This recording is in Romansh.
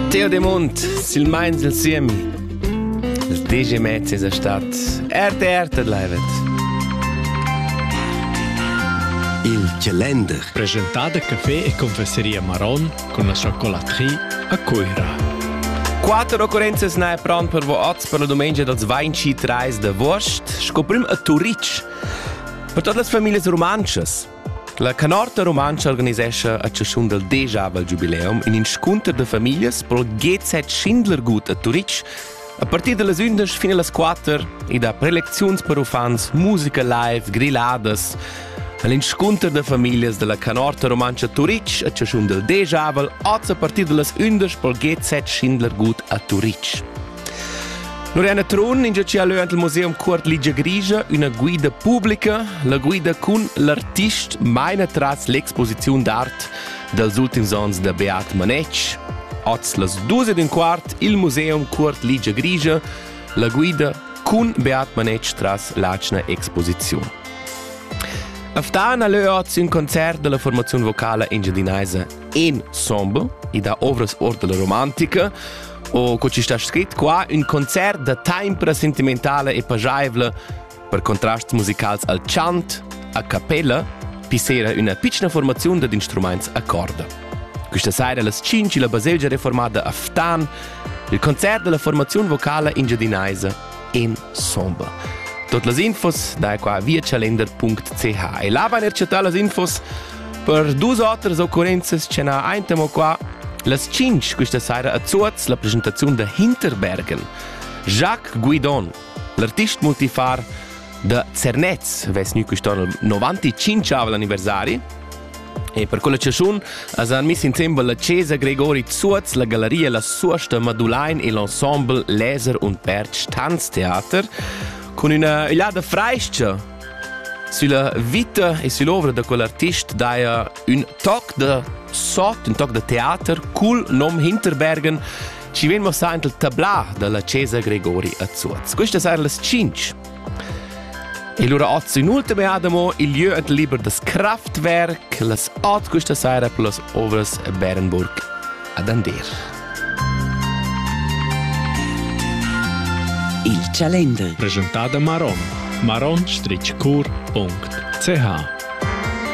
Teo de Mont, silmeins il siemi. Il DJ Mez es stat RTR tedlaivet. Il calender. Presentà da café e confesseria Maron con la chocolatrie a Cuira. Quattro occorrenze nai pran per vo oz per la domenica dels 23 d'agost, sco prim a Turitg. Per todas las familias romanschas, La Canorta Rumantscha organisescha a chaschun dal degiavel giubileum in inscunter da famiglias pro GZ Schindlergut a Turitg a partir da las 11 fin a las 4 e da prelecziuns per uffants, musica live, grilladas. L'inscunter da famiglias della Canorta Rumantscha Turitg a chaschun dal degiavel oz a partir da las 11 pro GZ Schindlergut a Turitg. Loriana Trun in ci ha leuant il museum Cuort Ligia Grigia üna guida publica, la guida cun l'artist maina tras l'exposiziun d'art dals ultims ons da Beat Manetsch. Oz las dus ed un quart il museum Cuort Ligia Grigia, la guida cun Beat Manetsch tras l'atschna exposiziun. Aftan ha leu oz un concert della formazione vocala engiadinaisa en Sombo, ed ha ovras ord della romantica, O co ci sta scrit qua un concert da tempra sentimentale e pajaivla per contrasts musicals al chant, a cappella, pi sera üna pitschna formaziun dad instrumaints a corda. Questa saira las 5 la baselgia reformada a Ftan, il concert della formazione vocale engiadinaisa in somber. Tot las infos da qua via calender.ch e là van er chattà las infos per dus otras occurrenzas che na aintamo qua las 5 questa saira a Zuoz la presentazione da Hinterbergen. Jacques Guidon, l'artist multifar da Zernez, vess nu quest'anno 95 anniversari E per quella chaschun as han miss insembel la chesa Gregori Zuoz, la gallaria La Suosta Madulain e l'ensemble Laser und Perch Tanztheater cun üna ögliada frais-cha sulla vita e sull'ovra da quell'artist daja ün toc da sot, ün toc da teater cul nom Hinterbergen ci vegn mossà int il tablà da la chesa Gregori a Zuoz. Quista saja las 5 E lura oz in ultima adamo il lieu et liber das Kraftwerk, las ot questa sera per las ovras Bärenburg ad Ander. Il Calender. Presentata Maron. maron-cur.ch